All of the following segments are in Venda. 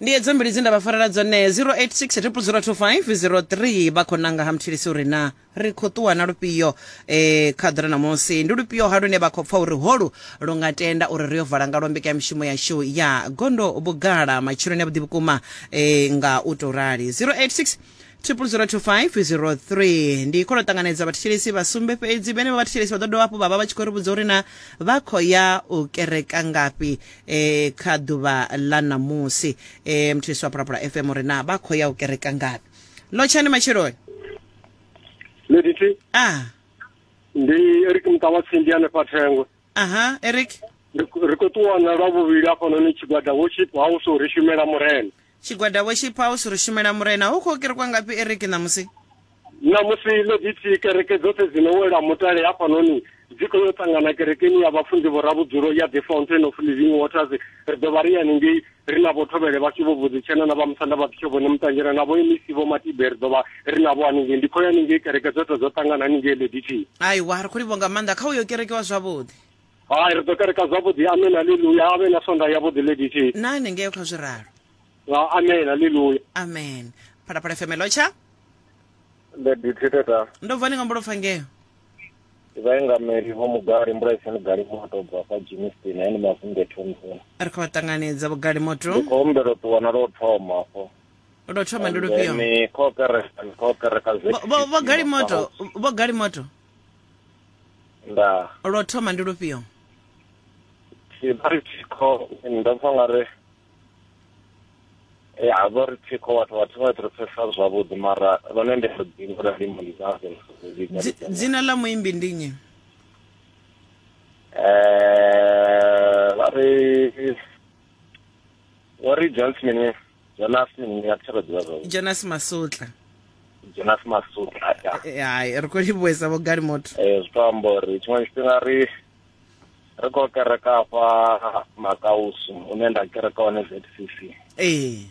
ndi edzo mbili dze nda vha farela dzone 0860002503 vha khou nanga ha mthilisi uri na ri khou ṱuwa na lufhio eh, kha ḓira namusi ndi lufhio ha lune vha khou pfa uri holu lu nga tenda uri ri yo vala nga lombeka ya mishumo yashu ya gondo vhugala matshiloni a vhuḓi vhukuma eh, nga u tou rali 086 002503 ndi khou tou ṱanganedza vhathetshelesi vha sumbe fhedzi vhene vha vhathetshelesi vha ḓo dovha hafhu vha vha vha tshi khou ri vhudza uri na vha khou ya u kereka ngafhi eh, kha ḓuvha ḽa ṋamusi eh, mthetshelesi wa phulaphula fm uri na vha khou ya u kereka ngafhi lotshani matsheloni Ladithi, ah ndi Eric Mutawatsi ndi hanefha Thengwe. aha eric Ri khou- ri khou ṱuwana lwa vhuvhili hafhanoni tshigwada worship house uri shumela murena. Tshigwada Worship House ri shumela Murena. Hu khou kerekwa ngafhi Eric ṋamusi? Ṋamusi Ledithi kereke dzoṱhe dzi no wela mutale hafhanoni dzi khou yo ṱangana kerekeni ya vhafunzi vho Ravhudzulo ya The Fountain of Living Waters. Ri ḓo vha ri haningei ri na vho Thovhele vhashu vho Vhudzitshena na vha Musanda vha Bishop Vhone Muṱanjela na vho MEC vho Matibe ri ḓo vha ri navho haningei. Ndi khou ya haningei kereke dzoṱhe dzo ṱangana haningei Ledithi. Aiwa, ri khou livhuwa nga maanḓa. Kha hu yo kerekiwa zwavhuḓi. hai ri ḓo kereka zwavhuḓi amen haleluya a vhe na sonda yavhuḓi lady t na hanengeo kha zwi ralo Ah, amen haleluya amen phalaphala fm hello tsha lady t tata ndo bva ni ngombo lopfa ngeo vhaengameli vho mugari mbulaisani gali moto bva kwa jimistin aini mavunge thomson ri khou vha ṱanganedza vhugale ndi moto khou humbela u ṱuwa na lwo thoma afho lwo thoma ndi lufhio ni khou kereka ni khou kereka Vho- vho- vho gali moto vho gali moto ndaa lwo thoma ndi lufhio thikho ndo pfa nga ri eh, ha vha ri thikho vhathu vhathu vha ri pfesa zwavhuḓi mara lone ndi ri dzingo la ndimo ndi zaze dzina ḽa muimbi ndi nnyi um vha ri o ri jonas mini jonas mini nga thero ḓivha zwo jonas masutla jonas masutla ya eh, eh, hai ri khou livhuwesa vho gali motho eh zwi to amba uri tshiṅwe tshifhinga ri ri khou kereka afha makausu une nda kereka hone zcc ee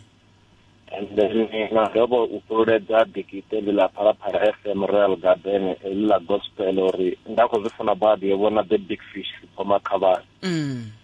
and then na dovha u fhululedza dikite ḽi ḽa phalaphala fm royal garden ḽi ḽa gospel uri nda khou zwi funa badi yo vhona the big fish sipoma khavhani mm.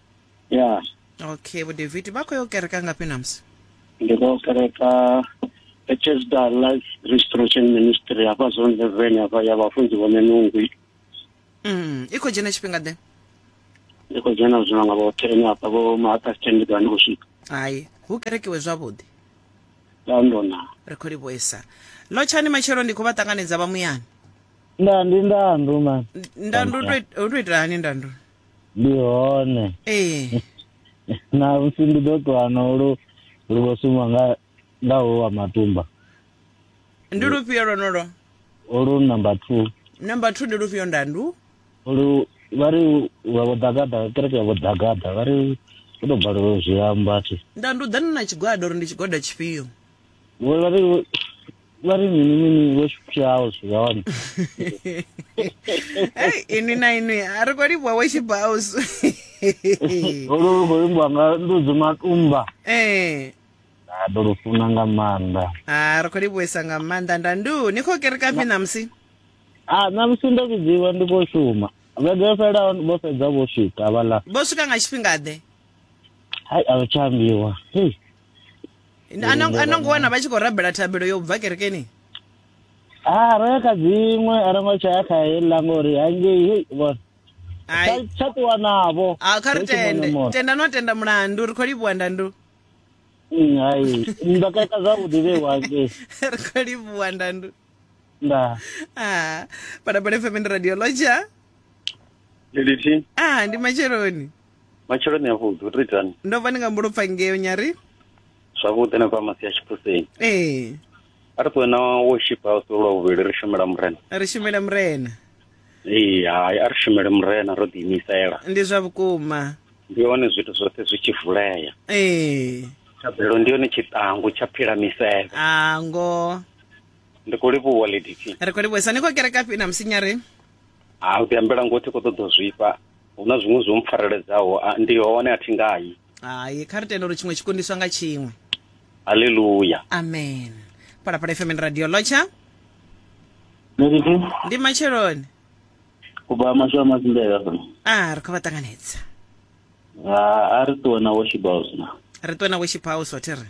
ya okay vho david vha khou yo kereka ngafhi namusi ndi khou kereka echesda life restoration ministry hafha zone eleven hafha ya vhafunzi vhone nungwi mm. i khou dzhena tshifhinga ḓe ndi khou dzhena zwino nga vho ten hafha vho mahata stand ndi ḓa ndi khou swika hai hu kerekiwe zwavhuḓi ndandona ri khou livhuesa lotshani matshelo ndi khou vha ṱanganedza vha muyani nda ndi ndandu man ndandu u to it- u to itela hani ndandu ndi hone ee na musi ndi ḓo ṱuwa no lu lu vho sumba nga nga ho wa matumba ndi lufhio lwonolo olu number two number two ndi lufhio ndandu olu vha ri wa vho ḓagaḓa kereke ya vho ḓagaḓa vha ri u tou balelwa zwi amba thi ndandu ḓani na tshigwada uri ndi tshigwada tshifhio vho vha ri vha ri mini mini vho tshiphiaho zwi hone hey ini na ini a ri khou livhuwa wo tshibhaus olu lu khou livhuwa nga ndudzi matumba ee a ḓo lu funa nga maanḓa a ri khou livhuwesa nga maanḓa nda ndu ni khou kereka phi ṋamusi a ṋamusi ndo vhidziwa ndi khou shuma vhege yo fhelaho vho fhedza vho swika vhaḽa vho swika nga tshifhingaḓe hai a vha tsha ambiwa hey Nda- ano- ano ngo wana vha tshi khou rabela thabelo yo bva kerekeni a ro ya kha dziṅwe a ro ngo tsha ya kha heiḽa ngori hangei hei vhona Ai. Tsha- tsha ṱuwa navho a kha ri Hu tshi mona tende mona. tenda no tenda mulandu ri khou livhuwa ndandu Mm, hai ndo keka zwavhuḓi vhewa hangei ri khou livhuwa ndandu nda Ah, parabole fm ndi radio loja lilithi ah ndi matsheloni matsheloni a vhuḓi u to itani ndo vha ni nga mbulo pfa ngeo nyari zwavhuḓi na fhamasi ya tshiphuseni ee a ri ṱuwe na worship house lwa vhuvhili ri shumela murena ri shumela murena ee hai a ri shumele murena ro ḓiimisela ndi zwa vhukuma ndi hone zwithu zwoṱhe zwi tshi vulea ee thabelo ndi yone tshiṱangu tsha phila misevhe a ngo ndi khou livhuwa lady t ri khou livhuesa ni khou kerekafhi na musinyari ha u ḓi ambela ngo thi khou ṱoḓa u zwifha hu na zwiṅwe zwo mpfareledzaho ndi hone a thi ngayi hai kha ri tenda uri tshiṅwe tshikundiswa nga tshiṅwe haleluya amen phalaphala fm radio lotsha ndi matsheloni kuba masho a mazimbela fana a ah, ri khou vha ṱanganedza ah, a ri ṱuwe na worship house na ri ṱuwe na worship house o thi ri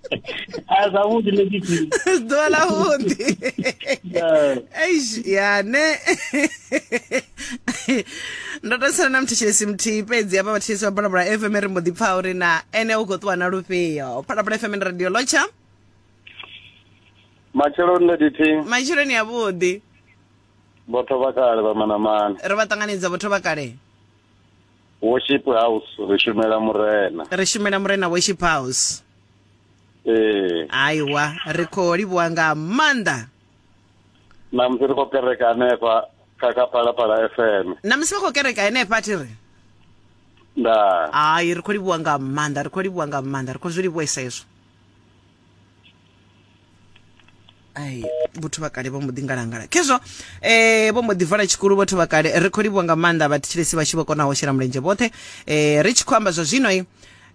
a zwavhuḓi ḽe tshifhinga ḓuvha ḽa vhuḓi eish ya ne ndo to sala na muthetshelesi muthihi fhedzi avha vhathetshelesi vha phalaphala fm ri mbo ḓi pfha uri na ene u khou ṱuwa na lufhio phalaphala fm ndi radio lotsha matsheloni ḽe dithi matshiloni avhuḓi vhotho vha kale vha manamane ri vha ṱanganedza vhotho vha kale worship house ri shumela murena ri shumela murena worship house ee aiwa ri khou livhuwa nga maanḓa na musi ri khou kereka hanefha kha kha phalaphala fm na musi vha khou kereka henefha thi ri nda hai ri khou livhuwa nga maanḓa ri khou livhuwa nga maanḓa ri khou zwi livhuwesa hezwo ai vhathu vha kale vho mbo ḓi ngalangala khezwo eh vho mbo ḓi vala tshikulu vhathu vha kale ri khou livhuwa nga maanḓa vhathetshelesi vhashu vho konaho shela mulenzhe vhoṱhe eh ri tshi khou amba zwa zwino i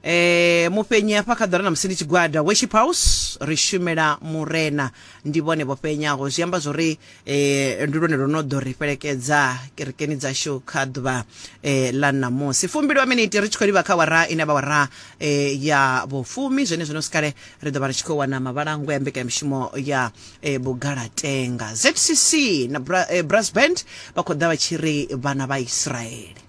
eh mufhenyi hafha kha ḓora na musi ndi tshigwada worship house ri shumela murena ndi vhone vho fhenyaho zwi amba zwori e ndi lwone lwo no ḓo ri fhelekedza kerekeni dzashu kha ḓuvha e ḽa ṋamusi fumbilwa miniti ri tshi khou livha kha wara ine vha wara e ya vhofumi zwene zwino sikale ri ḓo vha ri tshi khou wana mavhalango ya mbekanyamishumo ya e bugalatenga zcc na Bra, e, brass band vha khou ḓa vha tshi ri vhana vha israele